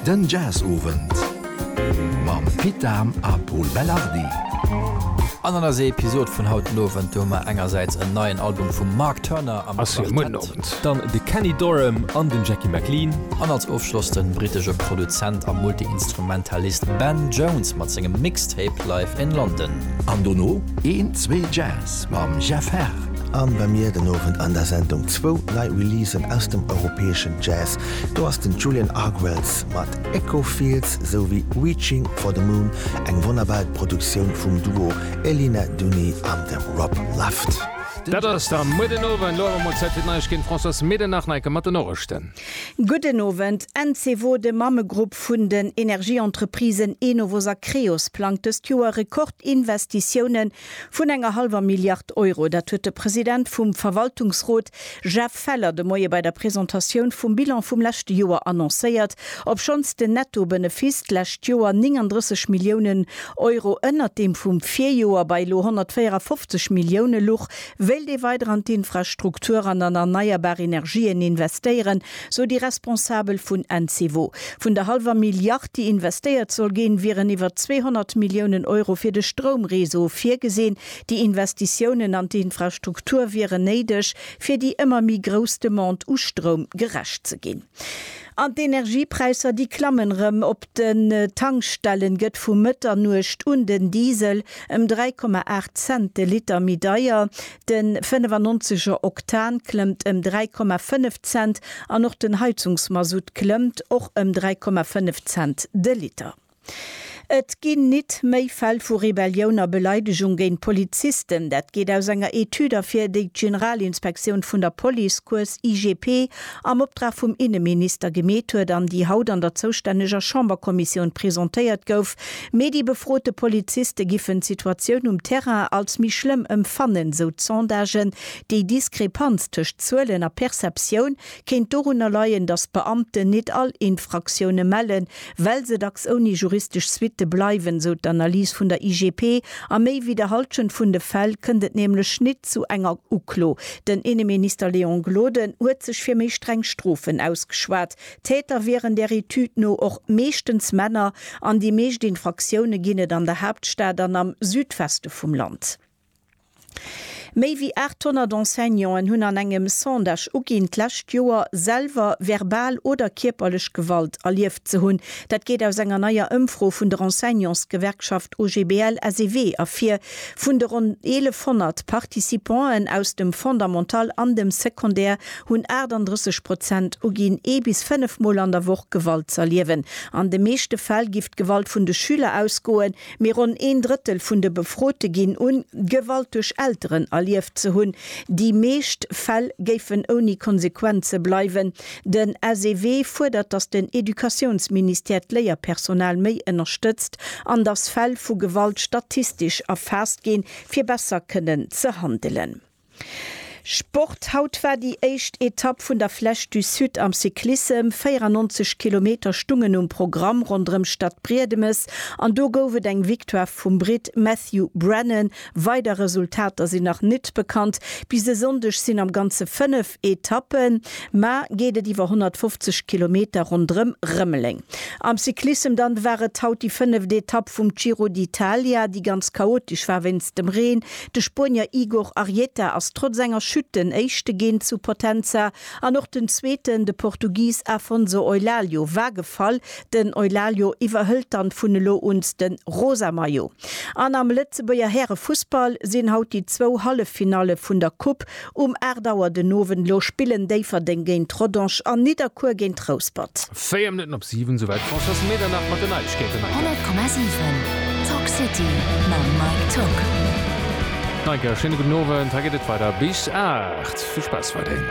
Den Jazzowend mam Pit Dahm a Pol Belardi. An an eiser Episod vun haut den Owend, do hu mer engersäits en neien Album vum Mark Turner am Quartett. Dann de Kenny Dorham an den Jackie McLean. An als Ofschloss den britesche Produzent a Multi-Instrumentalist Ben Jones mat sengem Mixtape Live in London. An dono een, zwee Jazz mam Jeff Herr. An bei mir den Owend an der Sendung zwou nei Releasen aus dem europäeschen Jazz. Do ass den Julian Argwells mat Echo Fields esou wéi Reaching for the Moon, eng wonnerbar Produktioun vum Duo Elina Duni an dem Rob Luft. Dat ass da muer den Owend. Lo awer mol Zäit fir d'Neiegkeeten. Françoise Medernach, Neike mat den Norechten. Gudden Owend. Encevo, de Mammegrupp vun den Energieentreprisen Enovos a Creos, plangt dëst Joer Rekordinvestitiounen Vun enger hallwer Milliard Euro. Dat huet de President vum Verwaltungsrot Jeff Feller de Moie bei der Presentatioun vum Bilan vum leschte Joer annoncéiert, obschonns den Netto-Benefiss d'lescht Joer 39 Milliounen Euro ënnert deem vum Virjoer bei elo 154 Millioune luch, wéilt ee weider an d'Infrastrukturen an erneierbar Energien investéieren. sou déi Responsabel vun Encevo. Vun der hallwer Milliard, déi investéiert soll ginn, wieren iwwer 200 Milliounen Euro fir de Stroumreseau virgesinn. Déi Investitiounen an d'Infrastruktur wieren néideg, fir déi ëmmer méi grouss Demande u Stroum gerecht ze ginn. An d'Energiepräisser, déi klammen erëm. Op den Tankstellen gëtt vu Mëtternuecht un den Diesel ëm 3,8 Cent de Liter méi deier. De 95 er Oktan klëmmt ëm 3,5 Cent an och den Heizungsmasutt klëmmt och ëm 3,5 Cent de Liter. Et ginn nit méi Fäll vu Rebellioun a Beleidegung géint Polizisten. Dat geet aus enger Etüd ervir, déi d'Generalinspektioun vun der Police, kuerz IGP, am Optrag vum Inneminister gemeet huet an déi haut an der zoustänneger Chamberkommissioun presentéiert gouf. Mee déi befrote Poliziste giffen d'Situatioun um Terrain als méi schlëmm empfannen, sou d'Sondagen. Déi Diskrepanz tëscht Zuelen a Perceptioun kéint dorunner leien, datt d'Beamten nit all Infraktioune mellen, well se dacks ouni juristesch Suitte bleiwen, sou d'Analys vun der IGP. A méi wéi der Hallschent vun de Fäll kënnt et nämlech nit zu enger Uklo. Den Inneminister Léon Gloden huet sech fir méi streng Strofen ausgeschwat. Täter wieren der Etüd no och meeschtens Männer an déi meescht Infraktioune ginn et an der Haaptstad an am Südweste vum Land. Méi wéi 800 Enseignanten hunn an engem Sondage uginn, d'lescht Joer selwer verbal oder kierperlech Gewalt erlieft ze hunn. Dat geet aus enger neier Ëmfro vun der Enseignantsgewerkschaft OGBL-SEW ervir. Vun de ronn 1.100 Participanten aus dem Fondamental an dem Secondaire hunn 38 Prozent uginn, ee bis fënnef Mol an der Woch Gewalt z'erliewen. An de meeschte Fäll géif d'Gewalt vun de Schüler ausgoen, Mee ronn een Drëttel vun de Befrote ginn un, Gewalt duerch Elteren erlieft ze hunn. Déi meescht Fäll géifen ouni Konsequenze bleiwen. Den SEW fuerdert, datt den Educatiounsministère d'Léierpersonal méi ënnerstëtzt an datt Fäll vu Gewalt statistesch erfaasst ginn, fir besser kënnen ze handelen. Sport, Haut war déi éischt Etapp vun der Flèche du Sud am Cyclissem. 94 Kilometer stungen um Programm ronderëm d'Stad Briedemes an do gouf et eng Victoire vum Britt Matthew Brennan. Weider Resultater sinn nach net bekannt. Bis e Sonndeg sinn am Ganze 5. Etappe, ma geet et iwwer 150 Kilometer ronderëm Rëmeleng. Am Cyclissem dann war et haut déi fënneft Etapp vum Giro d'Italia, déi ganz chaotesch war wéinst dem Reen. De Spuenier Igor Arrieta ass trotz enger Chute den Éischte ginn zu Potenza an och den Zweeten, de Portugis Afonso Eulálio, war gefall. Den Eulálio iwwerhëlt dann vun elo uns de rosa Maillot. An am Lëtzebuerger Härefussball sinn haut déi zwou Halleffinalle vun der Coupe Um 8 Auer den Owend elo spillen Déifferdeng géint Rodange an Nidderkuer géint Rouspert. 4 Minutten op 7, souwäit d'Françoise Medernach mat den Neiegkeeten. Mike. 100,7 Talk City mam Mike Tock. Mike, schéine gudden Owend. Hei geet et weider bis 8. Vill Spaass weiderhin.